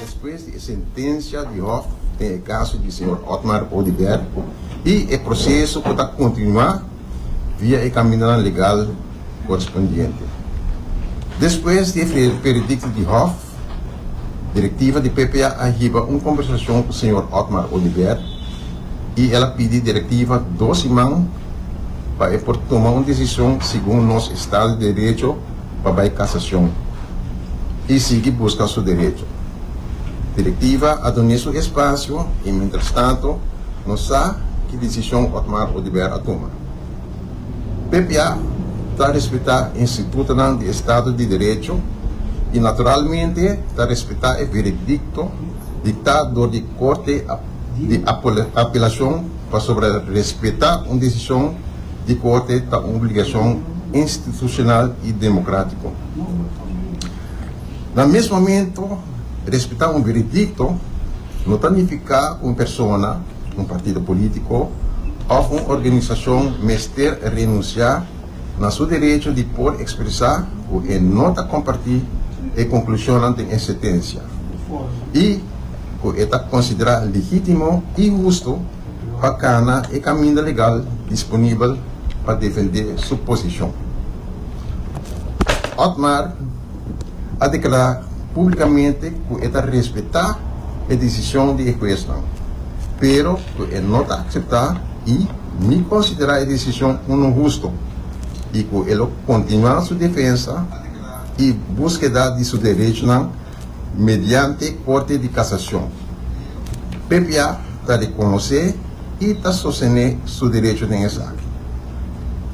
Despues di e sentencia di hof den e caso di señor Otmar Oduber y e proceso cu ta continua via e caminonan legal correspondiente. Despues di e veredicto di hof, directiva di PPA a hiba un conversacion cu señor Otmar Oduber y el a pidi directiva dos siman pa e por tuma un decision segun nos Estado de Derecho, pa bai kasacion y sigui busca su derecho. Directiva a done su espacio y mientras tanto no sa ki decision Otmar Oduber a tuma. Ppa ta respeta institutonan di estado di derecho y naturalmente ta respeta e veredicto dicta door di Corte di Apelacion pasobra respeta un decision di Corte ta un obligacion institucional y democratico. Na mes momento, respeta un veredicto no ta nifica cu un persona, un partido politico of un organisacion mester renuncia na su derecho di por expresa cu e no ta comparti e conclusionnan den e sentencia y cu e ta considera legitimo y husto pa kana e kaminda legal disponibel pa defendé su posishon. Otmar a deklará públikamente ku e ta respetá e desishon di e huesnan, pero ku e no ta akseptá i ni konsiderá e desishon unu hustu i ku e lo kontinuá su defensa i buskeda di su derechonan, Mediante Corte di Casacion, ppa ta reconoce y ta sostene su derecho den esaki.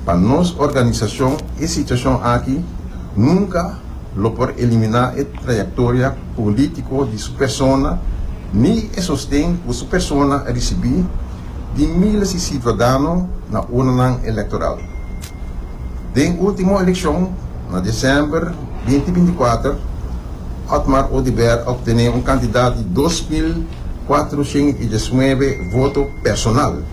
Pa nos organisacion e situacion aki nunca lo por elimina e trayectoria politico di su persona ni e sosten cu su persona a ricibi di miles di ciudadano na urnanan electoral. Den ultimo eleccion na december binti binti kuater, Otmar Oduber obtene un cantidad di dos mil kuatrusint i diesnuebe voto personal,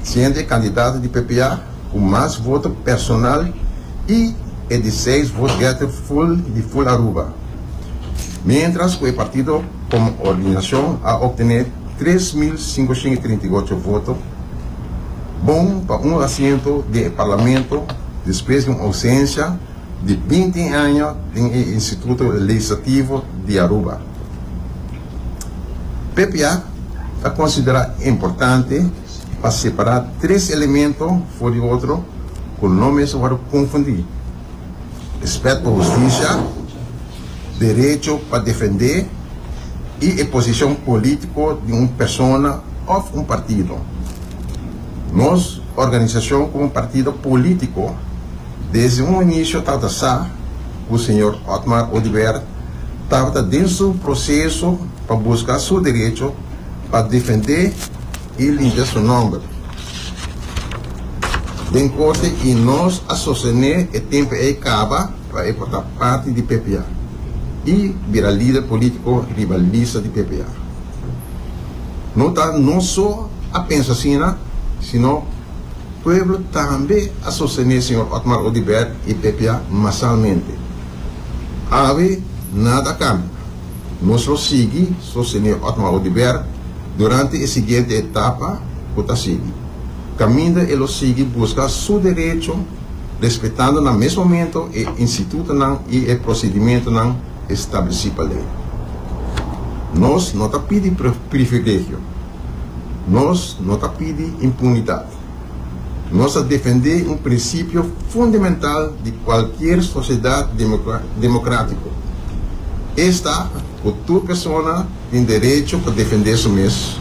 siendo e candidato di PPA cu mas voto personal i e di seis vote-getter full di full Aruba, mientras cu e partido como organizacion a obtene tres mil sinkosint i trinta i ocho voto. Bon pa un asiento den e Parlamento despues di un ausencia di binti aña den e Instituto Legislativo di Aruba. PPA ta considera importante pa separa tres elemento for di otro cu no mester worde confundi. respet pa hustisia, derecho pa defendé i e posishon polítiko di un persona òf un partido. Nos organisashon komo partido polítiko desde un inisio tabata sa ku señor Otmar Oduber tabata den su proseso pa buska su derecho pa defendé, I limpia su nomber den corte y nos a sostené e tempo ey caba pa ey por ta parti di ppa y bira lider politico riba lista di ppa. No ta nos so a pensa asina sino pueblo tambe a sostené señor Otmar Oduber y ppa masalmente. Awe nada a cambia. Nos lo sigui sostene Otmar Oduber durante e siguiente etapa cu ta sigui, caminda e lo sigui busca su derecho respetando na mes momento e institutonan y e procedimentonan estableci pa ley. Nos no ta pidi privilegio, nos no ta pidi impunidad. Nos ta defendé un prinsipio fundamental di kualkier sosiedat demokratiko. Es ta ku tur persona tin derecho pa defendé su mes,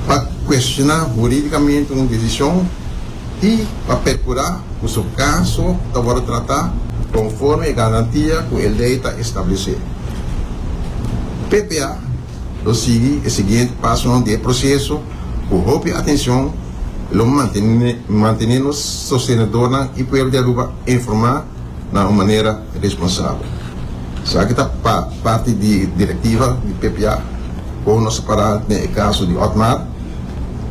pa kuestioná hurídikamente un desishon i pa perkurá ku su kaso ta wòrdu tratá konforme e garantia ku e lei ta establesé. Ppa. Lo sigui e siguiente pasonan di e proceso cu hopi atencion, y lo mantene mantene nos sostenedornan y pueblo di Aruba informa na un manera responsabel. Esaki ta pa parti di directiva di ppa, con nos a para den e caso di Otmar,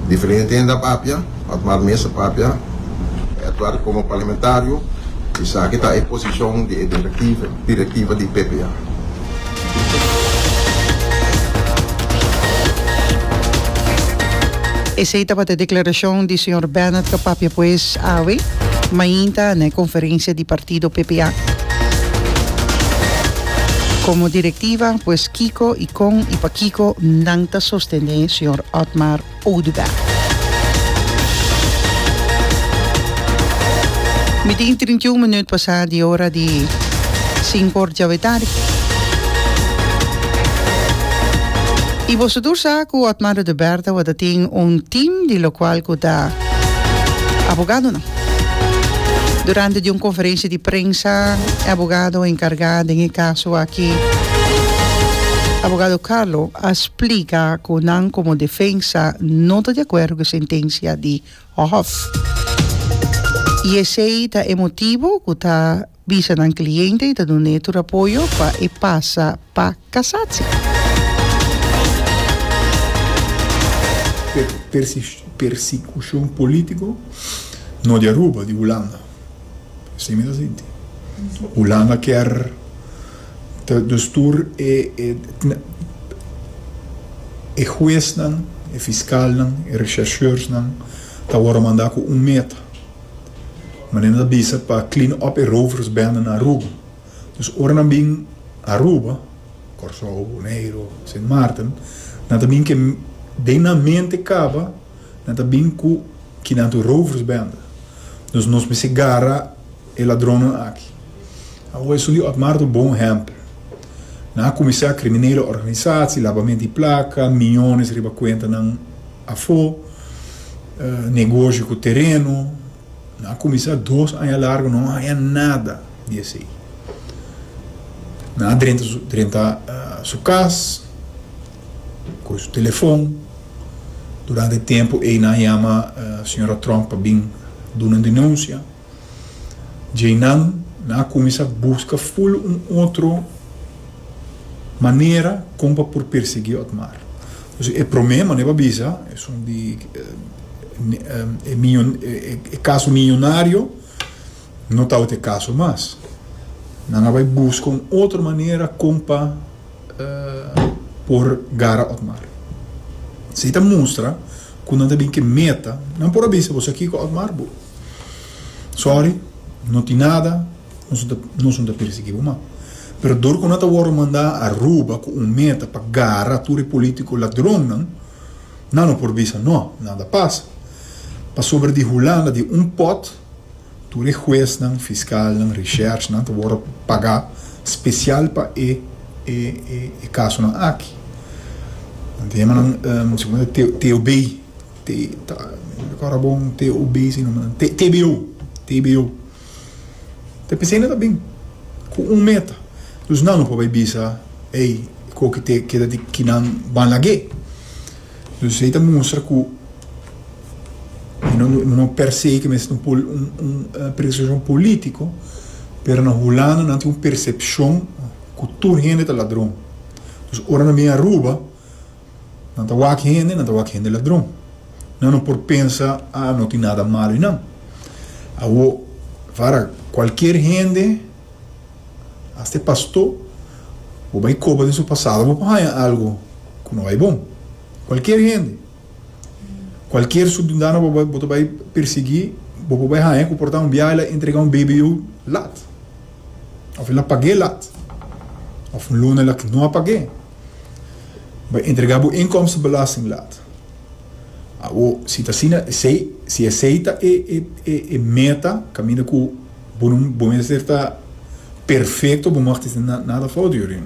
diferente hende a papia, Otmar Meza papia e aktuari komo parlamentario. Esaki ta e posishon di e direktiva di PPA. Esei tabata e deklarashon di señor Bennett ta papia pues awe mainta na e konferensia di partido PPA. Komo direktiva pues kiko i kon i pa kiko nan ta sostene señor Otmar. Oudega. Mitin i trinta i un minüt pasá di ora di sinku òrt djawe tardi. I boso tur sa ku Otmar Odo Berta bo ta tin un tim di lokual ku ta abogadonan. Durante di un konferensia di prensa e abogado enkargá den e kaso aki, abogado Carlo, a splica cu nan como defensa no ta di acuerdo cu e sentencia di Hof y esey ta e motibo cu ta bisa nan cliente y ta dun'e tur apoyo pa e pasa pa casatsi. Persecucion politico no di Aruba, di Hulanda. Así mi ta sinti. Hulanda kier ta dustur e, e, e huesnan, e fiskalnan, e rechercheursnan ta wòrdu mandá ku un meta. Manera nan ta bisa pa clean up e roversbende na Aruba. Dus ora nan bin Aruba, Kòrsou, Boneiru, Sint Maarten, nan ta bin ke den nan mente kaba, Nan ta bin ku kidnatu rovers bende, dus nos misti garra e ladronnan aki. Awo esun di Otmar ta un bon ehèmpel. Nan a kuminsá kriminel organisasi, labamento di plaka, miñones riba kuenta nan afó, negoshi ku tereno. Nan a kuminsá dos aña largu no haña nada di esei. Nan a drenta su kas. Cu su telefon. Durante tiempo ey nan yama Sra. Trump pa bin duna un denuncia. Djey nan, nan a cuminsa busca full un otro manera con pa por persegui Otmar. Entonces e prome manera pa bisa esun di e caso millonario. No tabatin e kaso mas. Nan a bai buska un otro manera kon pa por gara Otmar. Si ta mustra ku nan ta bin ke meta, nan por a bisa bo, sa kiko Otmar, bo sòri, no tin nada, nos no ta pirsigi bo mas. Pero dor ku nan ta wòrdu manda Aruba ku un meta pa gara tur e polítiko ladronnan, nan no por bisa nò, nada pasa. Pasobra di Hulanda, di un pòt. Tur e huesnan, fiskalnan, recherchnan ta wòrdu pagá spesial pa e e kasonan aki. Nan ta yama nan segun nan ta TOB, no rekorda bon TOB si e nombenan, TBO, TBO. Ta p'esei nan ta bin ku un meta. Dus nan lo por bai bisa, ey, koki te keda di kinan ban lag'é. Dus esei ta mustra ku e no no per se ke mester ta un pol un un presishon polítiko, pero na Hulanda nan tin un persepshon ku tur hende ta ladron. Dus ora nan bin Aruba nan ta wak hende, nan ta wak hende ladron. Nan no por pensa a no tin nada malo i nan. Awo, vara, kualkier hende. Asta e pastó bo bai koba den su pasado bo por haña algu ku no bai bon. Kualkier hende, kualkier subdundano bo bo ta bai persiguí bo por bai haña ku por ta un biaha el a entregá un BBU lat òf el a pag'é lat òf un luna el a no a pag'é bai entregá bo inkomstenbelasting lat. Awor si ta asina esei si esei ta e meta kaminda ku. Bo no bo mester ta perfecto bo mester tin nada fout yuri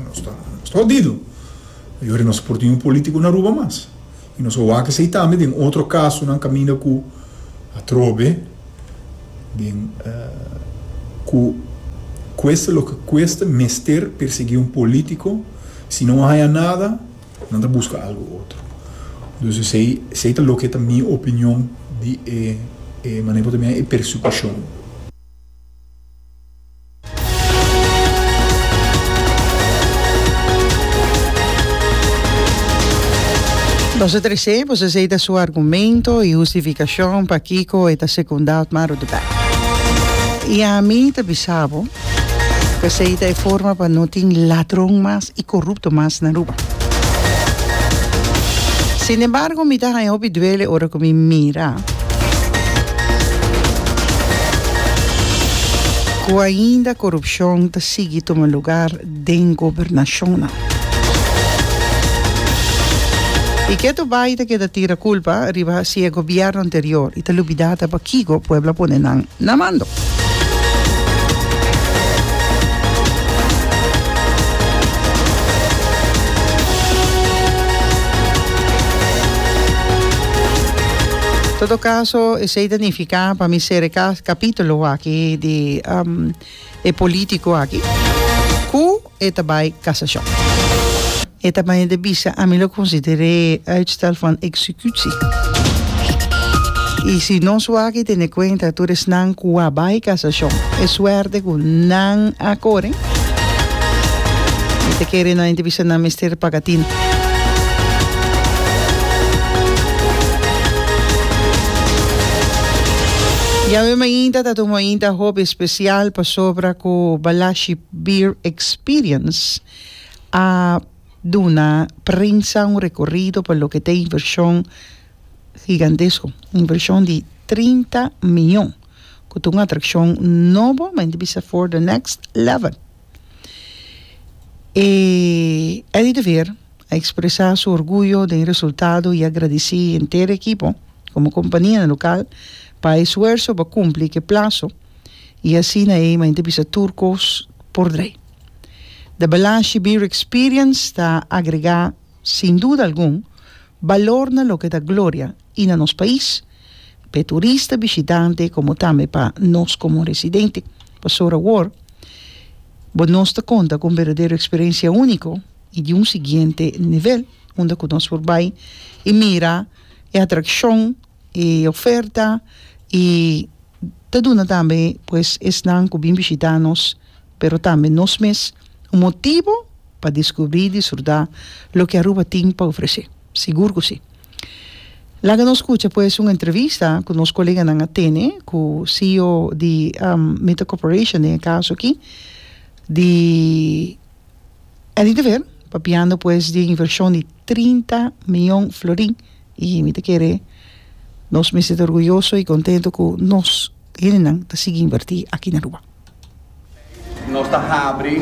nos ta hodido yuri nos por tin un politico na Aruba mas y nos a wak esey tambe den otro casonan caminda cu atrobe den cu cuesta loke cuesta mester persegui un politico si no a haya nada. Nan ta buska algu otro. Dus esei, esei ta loke ta mi opinion di e, e manera ku ta mira e persekushon. Boso ta risé, boso esei ta su argumento i hustifikashon pakiko e ta sekundá Otmar Oduber. I ami ta bisa bo. P'esei ta e forma pa no tin ladron mas i korupto mas na Aruba. Sinembargo mi ta haña hopi duele ora ku mi mira ku ainda korupshon ta sigui tuma lugar. den gobernashonnan. I ketu bai ta keda tira kulpa riba si e gobièrnu anterior i ta lubidá ta pakico pueblo a pone nan na mando. Todo caso, esei ta nifiká pa mi sere capítulo aki di. e politico aki cu e ta bay casacion. E ta maya de bisa ami lo considera e uitstel van executie. Y si nos wak tene cuenta tur esnan cu a bay casacion e suerte cu nan a core mi ta kere nan ta bisa nan mester paga tinta. Yawe mainta ta tuma inta hopi. Spesial pasobra ku Balashi Beer Experience a duna prensa un rekorido pa loke ta e invershon higantesko, un invershon di trinta miyon, ku ta un atrakshon nobo, men ta bisa for the next level. E Eddie de Veer. a expresa su orguyo den e resultado y a gradeci e henter ekipo como compania na local pa e esfuerso pa cumpli cu e plazo y asina ey m'a henter bisa tur cos por draai. The Balashi Beer Experience ta agrega sin duda algun balor na loke ta gloria y na nos pais p'e turista bishitante como tambe pa nos como residente, pasobra awor bo nos ta conta cu un berdadero experiencia unico. i di un siguiente nivel unda ku nos por bai i mira e atrakshon, e oferta i ta duna tambe pues esnan ku bin bishitá nos pero tambe nos mes un motibu pa diskubrí i disfrutá loke Aruba tin pa ofresé. Sigur ku si. Laga nos kucha pues un entrevista ku nos koleganan a tene ku CEO di Meta Corporation den e kaso aki di. Eddie de Ver, papiando pues di e invershon di trinta mion florin, i mi ta kere nos mester ta orguyoso i kontentu ku nos hendenan ta sigui invertí aki na Aruba. Nos ta habri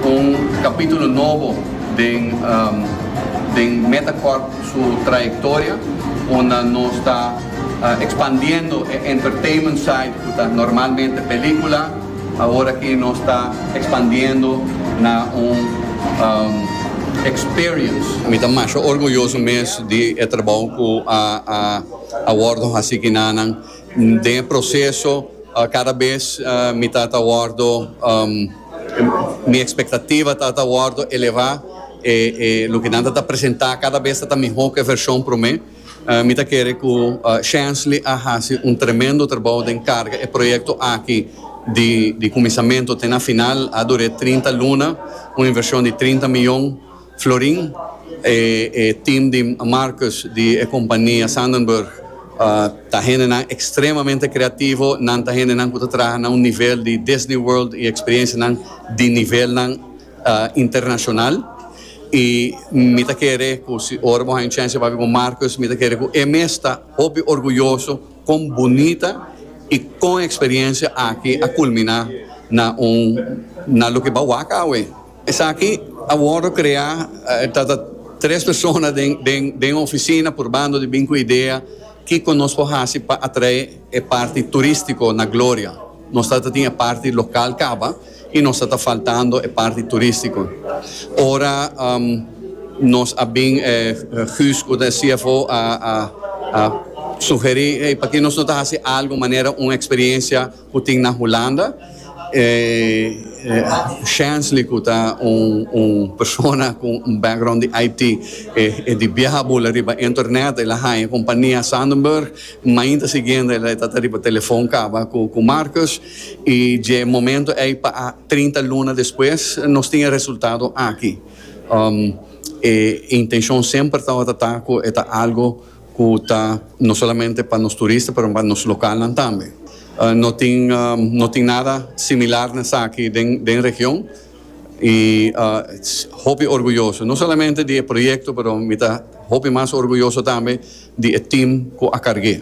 un kapítulo nobo den den Metacorp su trayektoria, unda nos ta ekspandiendo e entertainment side ku ta normalmente pelíkula, Awor aki nos ta expandiendo na un experience. Mi ta masha orguyoso mes di e trabou cu a wordo haci kinanan. Den e proceso cada bes mi ta ta wordo, mi expectativa ta ta wordo eleva. E loke nan ta ta presenta cada bes ta ta miho cu e version prome. Mi ta kere ku Shansley a hasi un tremendo trabou den karga e proyekto aki di kuminsamentu te na final. A dur'é trinta luna, un invershon di trinta miyon florin. E tim di Marcus di e kompania Sandenburg ta hendenan ekstremamente kreativo. Nan ta hendenan ku ta traha na un nivel di Disney World i eksperensianan di nivelnan. internacional y mi ta kere cu si ora bo haña chance papia cu Marcus mi ta kere cu e mes ta hopi orguyoso con bunita y con experiencia aki a culmina na un na loke ba wak awe. Esaki a wordo crea ta ta tres persona den den den un oficina purbando di bin cu idea kico nos por haci pa atrae e parti turistico na Gloria. Nos ta ta tin e parti local caba. y nos a ta faltando e parti turistico. Ora nos a bin e Guus cu ta e cfo a a sugeri hey pakier nos no ta haci algo manera un experiencia cu tin na Hulanda. E Shansley cu ta un persona cu un background di IT e di biaha bula riba internet el a haya compania Sandenburg. Mainta siguiente el a ta ta riba telefon caba cu Marcus. I dje momento ei pa a trinta luna despues nos tin e resultado aki. E intencion semper tabata ta cu e ta algo cu ta no solamente pa nos turista pero pa nos localnan tambe. No tin no tin nada similar na esaki den den region i hopi orguyoso no solamente di e proyecto pero mi ta hopi mas orguyoso tambe di e team cu a carge.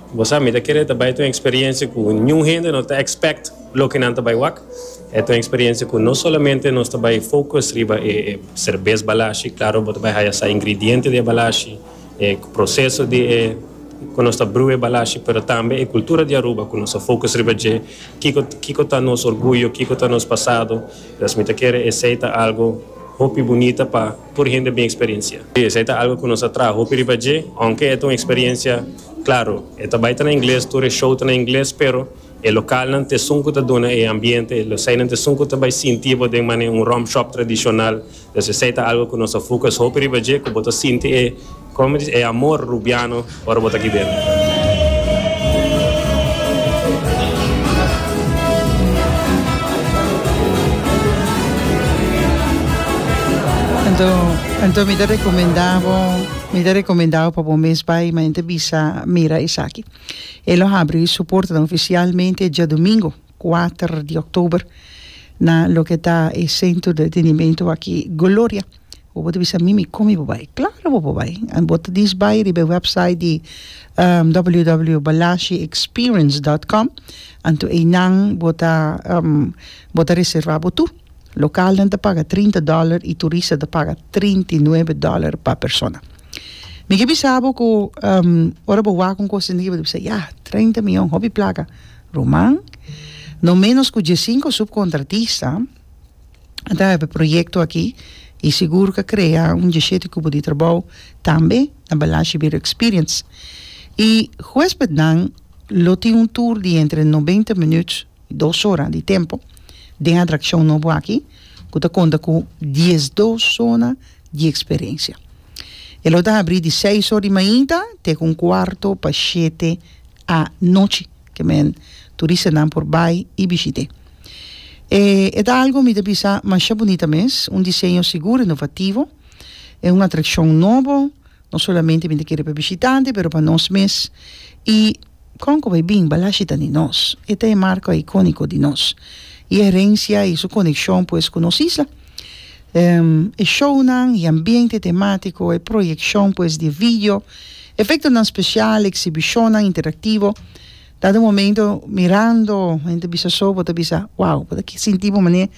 Bo sa, mi ta kere ta bai ta un experiencia cu niun hende no ta expect loke nan ta bai wak. E ta un experiencia cu no solamente nos ta bai focus riba e cervez balashi, claro bo ta bai haya sa ingrediente di e balashi, e proceso di e cu nos ta brew e balashi, pero tambe e cultura di Aruba cu nos a focus riba dje, kico kico ta nos orguyo, kico ta nos pasado, entonces mi ta kere esey ta algo hopi bunita pa. Tur hende bin experiencia. Si, esei ta algo cu nos a traha hopi riba dje, aunke e ta un experiencia, claro, e ta bay ta na ingles, tur e show ta na ingles, pero e localnan ta esun cu ta duna e ambiente, e eseinan ta esun cu ta bay sinti bo den mane un rum shop tradicional, entonces esei ta algo cu nos a focus hopi riba dje, cu bo ta sinti e. Comedies e amor Rubiano ora bo ta aki den. Anto mi ta recomenda bo mi ta recomenda bo pa bo mes bay ma inte bisa mira esaki e lo habri su portanan oficialmente diadomingo cuater di october na loke ta e centro de entretenimento aki Gloria. Bo por ta bisa, mimi, kon mi por bai? Klaro bo por bai. Bo ta dies bai riba e wèpsait di www.balashiexperience.com, anto einan bo ta bo ta reservá bo tur. Lokalnan ta paga trinta dòler i turista ta paga trinta i nuebe dòler pa persona. Mi ke bisa bo ku ora bo wak un kos asina bo ta bisa, yah, treinta miyon, hopi plaka. Ruman, no ménos ku dies sinko supkontratista ta hebe proyecto aki y sigur ca crea un djeshete cubo di trabao tambe na Balashi Beer Experience y huespednan lo tin un tour di entre noventa minuut y dos ora di tempo den atraccion nobo aki cu ta conta cu diesdos zona di experiencia. E lo ta habri di seis ora di mainta te cu un cuarto pa shete anochi. ke men turistanan por bai i bishit'é. E e ta algu mi ta bisa masha bunita mes, un diseño sigur inovativo, e un atrakshon nobo, no solamente mi ta kere pa bishitante pero pa nos mes i kon ku bai bin balashi ta di nos, e ta e marko ikóniko di nos, i e herensia i su konekshon pues ku nos isla. E shownan, e ambiente temátiko, e proyekshon pues di e video, efektonan spesial, eksibishonnan interaktivo, ta den momento mirando henter bisa so bo ta bisa wow bo ta ke sinti bo manera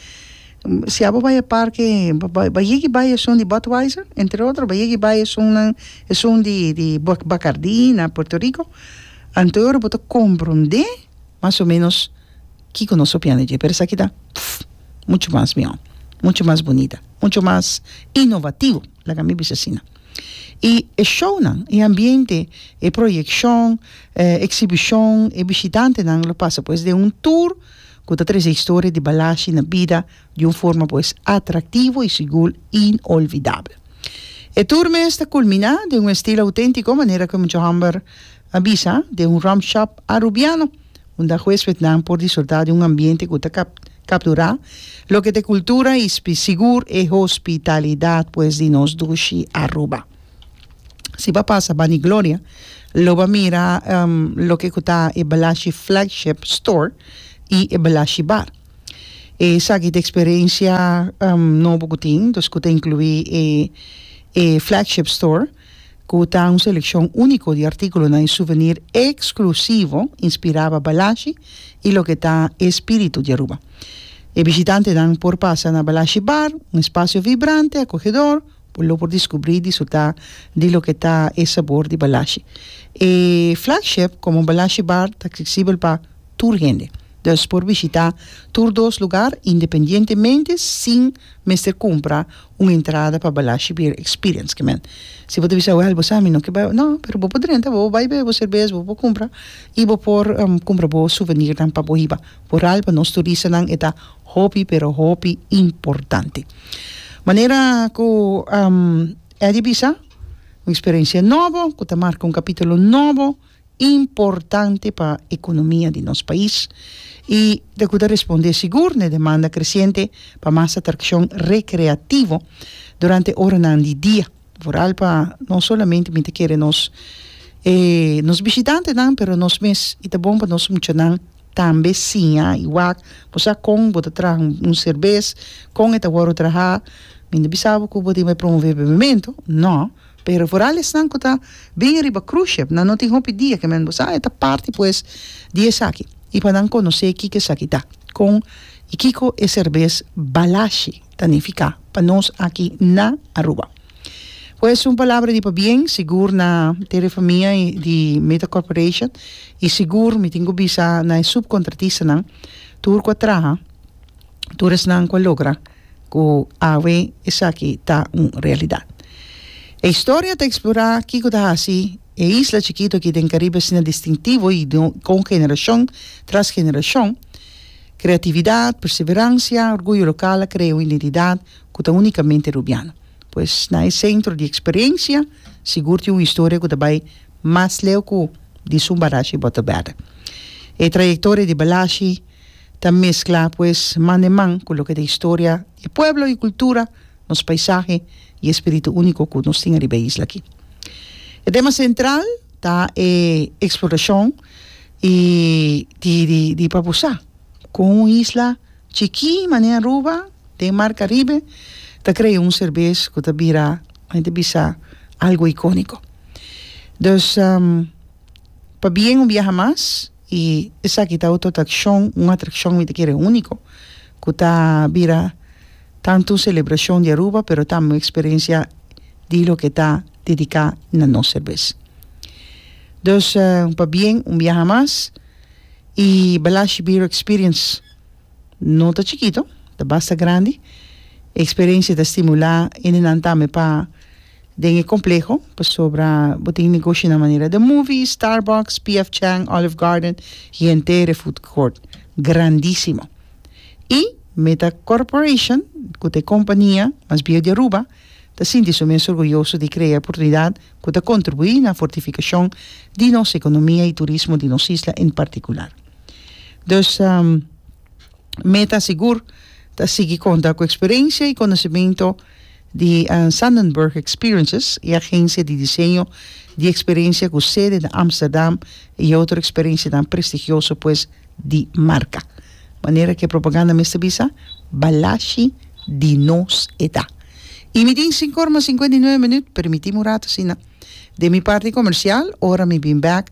si abo bai e parke bai yega i bai esun di Budweiser entre otro bai yega i bai esunnan esun di di Bacardi na Puerto Rico anto e ora bo ta komprende mas o menos Kiko nos opinan di dje? Pero esaki ta mucho mas mihó, mucho mas bunita, mucho mas inovativo, laga mi bisa asina. I e shownan, e ambiente, e proyekshon, e eksibishon, e bishitantenan lo pasa pues den un tur ku ta trese historia di Balashi na bida di un forma pues atraktivo i sigur inolvidabel. E tur mes ta kulminá den un estilo auténtiko, manera ku Muchahamber a bisa, den un rum shop arubiano. unda hueswetnan por disfrutá di un ambiente ku ta kapturá loke ta e kultura i sigur e hospitalidat pues di nos dushi Aruba. Si bo a pasa bani Gloria lo bo a mira loke ku ta e Balashi Flagship Store i e Balashi Bar. Esaki ta e eksperensia nobo ku tin, ku ta inkluí e Flagship Store. ku ta un selekshon úniko di artíkulonan i suvenir eksklusivo inspirá pa Balashi i loke ta e spíritu di Aruba. E bishitantenan por pasa na Balashi Bar, un espasio vibrante, akogedor, bo lo por diskubrí i disfrutá di loke ta e sabor di Balashi. E flagship komo Balashi Bar ta aksesibel pa tur hende, dus por bishitá tur dos lugar independientemente sin mester kumpra un entrada pa Balashi Beer Experience ke men si bo ta bisa wèl bo sa mi no ke bai no pero bo por drenta bo por bai bebe bo serbes bo por kumpra i bo por kumpra bo suvenirnan pa bo hiba bo ral pa nos turistanan e ta hopi pero hopi importante manera ku Eddy a bisa un eksperensia nobo ku ta marka un kapitulo nobo. importante pa economia di nos pais y ta cuda responde sigur na e demanda creciente pa mas atraccion recreativo durante oranan di dia, vooral pa no solamente mi ta kere nos e nos bishitantenan pero nos mes y ta bon pa nos muchanan tambe siña y wak bo sa con bo ta traha un serbes con e ta wordo traha mi no bisa bo cu bo tin bay promove bebemento no. Pero vooral esnan cu ta bini riba cruce ship nan no tin hopi dia que men bosa e ta parti pues di esaki y pa nan conoce kico esaki ta, con y kico e serbes balashi ta nifica pa nos aki na Aruba. Pues un palabra di pabien sigur na Tere Famia di Meta Corporation y sigur mi tin cu bisa na e subcontratistanan tur cu a traha tur esnan cu a logra Ku awe esaki ta un realidat. E historia ta eksplorá kiko ta hasi e isla chikito aki den Karibe asina distintivo i kon generashon tras generashon kreatividat, perseveransia, orguyo lokal a krea un identidat ku ta únikamente Rubiano. Pues na e sentro di eksperensia sigur tin un historia ku ta bai mas leu ku di Sumbalasje i Bottle Batter. E trayektoria di Balashi Ta mescla pues man den man cu loke ta historia e pueblo y cultura, nos paisahe y e spiritu unico cu nos tin ariba e isla aki. E tema central ta e exploracion y di di di Papusa cu un isla chiki mane Aruba den mar Caribe ta crea un serbes cu ta bira men ta bisa algo iconico. Dus pabien un biaha mas. I esaki ta otro trakshon, un atrakshon mi ta kere úniko, ku ta bira tantu un selebrashon di Aruba pero tambe un eksperensia di loke ta dediká na nos serbes. Dus pabien un biaha mas i Balashi Beer Experience no ta chikito, ta basta grandi, e eksperensia ta stimulá hendenan tambe pa. Den e kompleho, pasobra bo tin negoshi na manera The Movies, Starbucks, PF Chang, Olive Garden i entere food court grandisimo. I Meta Corporation, ku ta e kompania mas biehu di Aruba, ta sinti su mes orguyoso di krea e oportunidat ku ta kontribuí na fortifikashon di nos ekonomia i turismo di nos isla en partikular. Dus Meta sigur ta sigui konta ku eksperensia i konosementu di Sanddenburg Experiences, e agensia di diseño di experensia cu sede na Amsterdam y e otro experensianan prestigioso pues di marca. Manera cu e propaganda mester bisa, Balashi di nos eta. Y mi tin cinco ora mas cincuenta y nueve minuut, permiti mi un rato asina. Den mi parti comercial, ora mi bin bek,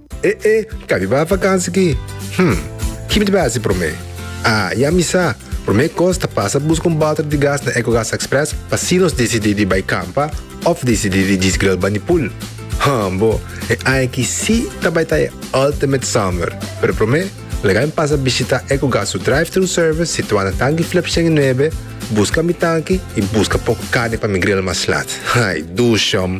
E e, kabi bai vakansi ki? Hm, kipi ta bai hasi promé? Ah, ya mi sa! Promé kos ta pasa buska un balter di gas na Ecogas Express pa si nos disidí di bai kampa òf disidí di djis gril bani pool. Hm bo, e aña aki sí ta bai ta e ultimate summer! Pero promé, lagain pasa bishitá Ecogas su drive-thru service situá na Tanki Flip shen i Nuebe, buska mi tanki i buska poku carni pa mi gril mas laat. Ay, duushom!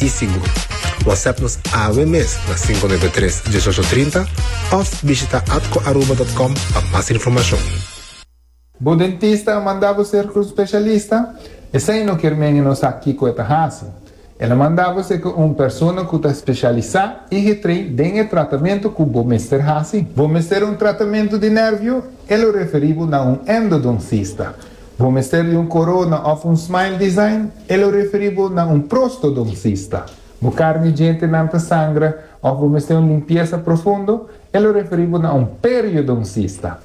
i sigur. Whatsapp nos awe mes na cinco nueve tres dieciocho trinta of bishita atcoaruba dot com pa mas informacion. Bo dentista a manda bo ser tur specialista? Esei no kier men e no sa kico e ta haci. El a manda bo ser cu un persona cu ta specialisa i getrei den e tratamento cu bo mester haci. Bo mester un tratamento di nervio? E lo referi bo na un endodoncista. Bo mester di un corona of un smile design? E lo referi bo na un prostodoncista. Bo carni djentenan ta sangra of bo mester un limpiesa profundo? E lo referi bo na un periodoncista.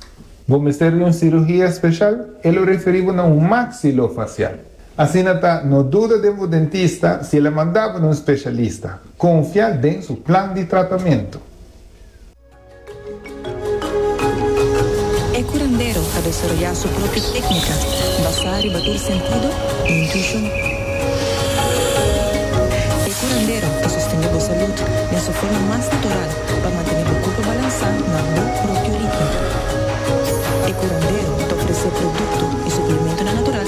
Bo mester di un cirugia special? E lo referi bo na un maxilofacial. Asina ta, no duda den bo dentista si el a manda bo na un specialista. Confia den su plan di tratamento. E curandero ta desaroyá su propio técnica basá riba tur sentido i intuishon. E curandero ta sostendé bo salud den su forma mas natural pa mantené bo corpo balansá na bo propio ritmo. E curandero ta ofrecé producto i suplementonan natural